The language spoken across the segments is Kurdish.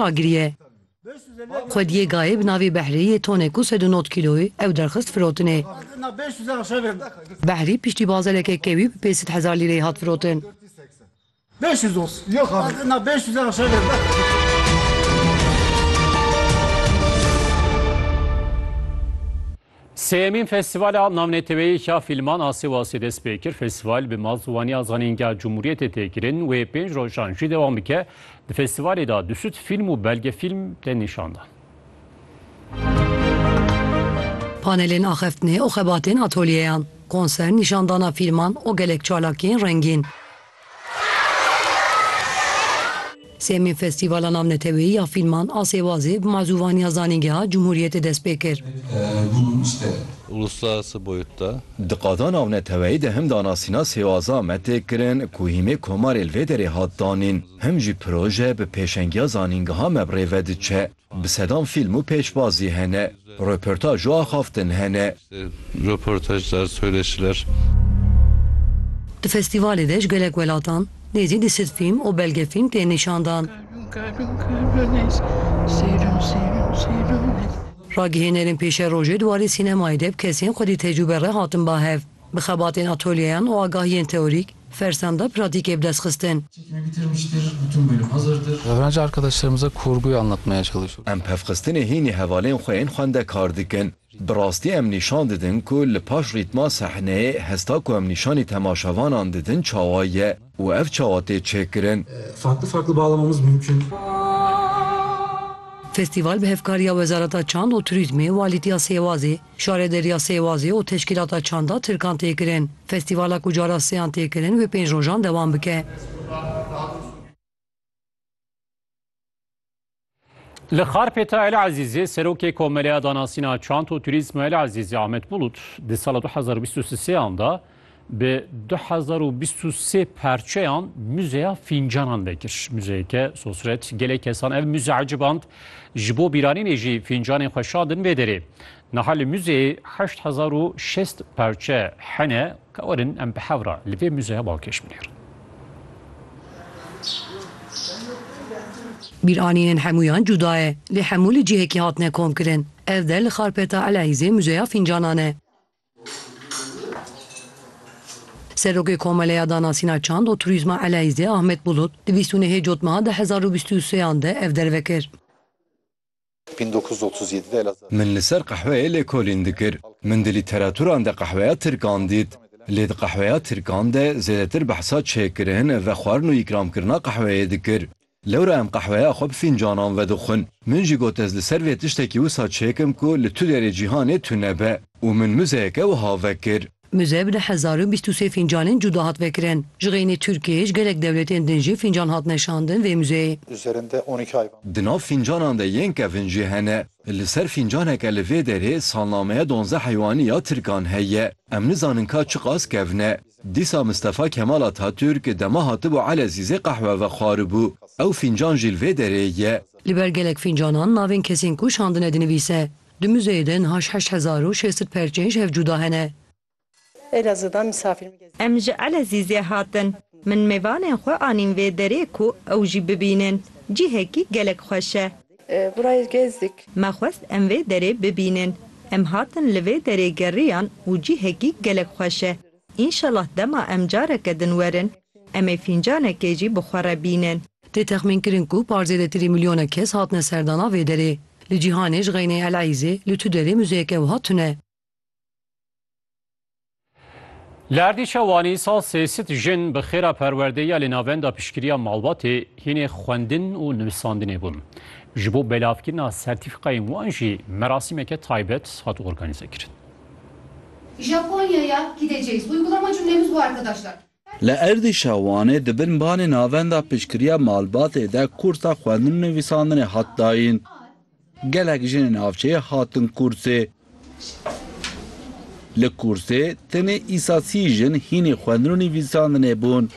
agiriye. Xwediyê gayê bi navê Behrî yê tonê ku sed û nod kîloyî ew derxist firotinê. Behrî piştî bazeleke kewî bi pênc sed hezar lîreyê hat firotin. Sêyemîn Festîvala Navneteweyî ya Fîlman a Sêwasê dest pê kir. Festîval bi malziwaniya Zanîngeha Cumhuriyetê tê kirin. Wê pênc rojan jî dewam bike. Di festîvalê de du sed fîlm û belgefîlm tên nîşan dan. Panelên axeftinê û xebatên atolyeyan, konser, nîşandana fîlman û gelek çalakiyên rengîn. Sêyemîn Festîvala Navneteweyî ya Fîlman a Sêwazê bi mazûvaniya Zanîngeha Cumhuriyetê dest pê kir. uluslararası boyutta. Di qada navneteweyî de him danasîna Sêwazan me tê kirin ku hîmê komarê li vê derê hat danîn, him jî proje bi pêşengiya zanîngeha me bi rê ve diçe. Bi sedan fîlm û pêşbazî hene, röportaj û axaftin hene. Röportajlar, söyleşiler. Di festîvalê de ji gelek welatan, nêzî du sed fîlm û belgefîlm tên nîşan dan. Ragihênerên pêşerojê di warê sînemayê de bi kesên xwedî tecrûbe re hatin ba hev. Bi xebatên atolyeyan û agahiyên teorîk, Fersan da pratîkê bi dest xistin. Em pevxistinê hînî hevalên xwe yên xwendekar dikin. Bi rastî em nîşan didin ku li paş rîtma sehneyê hesta ku em nîşanî temaşevanan didin çawa ye û ev çawa tê çêkirin. Festîval bi hevkariya Wezareta Çand û Turîzmê, Walîtiya Sêwazê, Şarê Derya Sêwazê û Teşkîlata Çanda Tirkan tê kirin. Festîvala ku cara seyan tê kirin wê pênc rojan dewam bike. Li Xarpêta El Ezîzê Serokê Komeleya Danasîna Çand û Turîzma El Ezîzê Ahmet Bulut di sala du hezar û bîst û sê an de Bi du hezar û bîst û sê parçeyan Muzeya Fîncanan vekir. Muzeyeke sosret gelê kesan ev muze eciband. Ji bo bîranînê jî fîncanên xwe şandin vê derê. Niha li muzeyê heşt hezar û şêst parçe hene. Kawerin em bi hev re li vê muzeya balkêş binêrin. Bîranînên hemûyan cuda ye, lê hemû li cihekî hatine komkirin. Ev der li xarpeta Eleyîzê Muzeya Fîncanan e. Serokê Komeleya Danasîna Çand û Turîzma Eleyzê Ahmet Bulut di bîst û nehê cotmeha di hezar û bîst û seyan de ev derve kir. Min li ser qehweyê lêkolîn dikir. Min di lîteraturan de qehweya tirkan dît. Lê di qehweya tirkan de zêdetir behsa çêkirin, vexwarin û îkramkirina qehweyê dikir. Lewra em qehweya xwe bi fîncanan vedixwin. Min jî got ez li ser vê tiştekî wisa çêkim ku li tu derê cîhanê tune be û min muzeyeke wiha vekir. Muze bi du hezar û bîst û sê fîncanên cuda hat vekirin. Ji xeynî Tirkiyê ji gelek dewletên din jî fîncan hatine şandin vê muzeyê. Di nav fîncanan de yên kevin jî hene. Li ser fîncaneke li vê derê salnameya donzdeh heywanî ya Tirkan heye. Em nizanin ka çiqas kevin e. Dîsa Mistefa Kemal Atatürk dema hatibû Elezîzê qehwe vexwaribû. Ew fîncan jî li vê derê ye. Li ber gelek fîncanan navên kesên ku şandine dinivîse. Di muzeyê de niha ji heşt hezar û şêst sed perçên ji hev cuda hene. Em ji Elezîzê hatin. Min mêvanên xwe anîn vê derê ku ew jî bibînin. Cihekî gelek xweş e. Burayê gezdik. Me xwest em vê derê bibînin. Em hatin li vê derê geriyan û cihekî gelek xweş e. Înşellah dema em careke din werin, em ê fîncanekê jî bi xwe re bînin. Tê texmîn kirin ku par zêdetirî milyonek kes hatine serdana vê derê. Li cîhanê ji xeyneyê El Eîzê li tu derê muzeyeke wiha tune. Li Erdîşa Wanî sal sê sit jin bi xêra perwerdeyî ya li Navenda Piştgiriya Malbatê hînê xwendin û nivîsandinê bûn. Ji bo belavkirina sertîfîkayên wan jî merasîmeke taybet hat organîzekirin. Japonya'ya gideceğiz. Uygulama cümlemiz bu arkadaşlar. Li êrdîşa Wanê di bin banê Navenda Piştgiriya Malbatê de kûrsa xwendin û nivîsandinê hat dayîn. Gelek jinê navçeyê hatin kûrsê. Li kûrsê tenê îsa sî jin hînê xwendin û nivîsandinê bûn.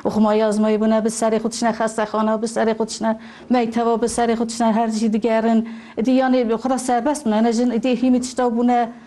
Oxumayî azmayî bûne, bi serê xwe tişne xestexana, bi serê xwe tişne mekteba, bi serê xwe tişne her cî digerin. Îdî yanê xwe re serbest bûne ne jin, îdî hînî tişta bûne.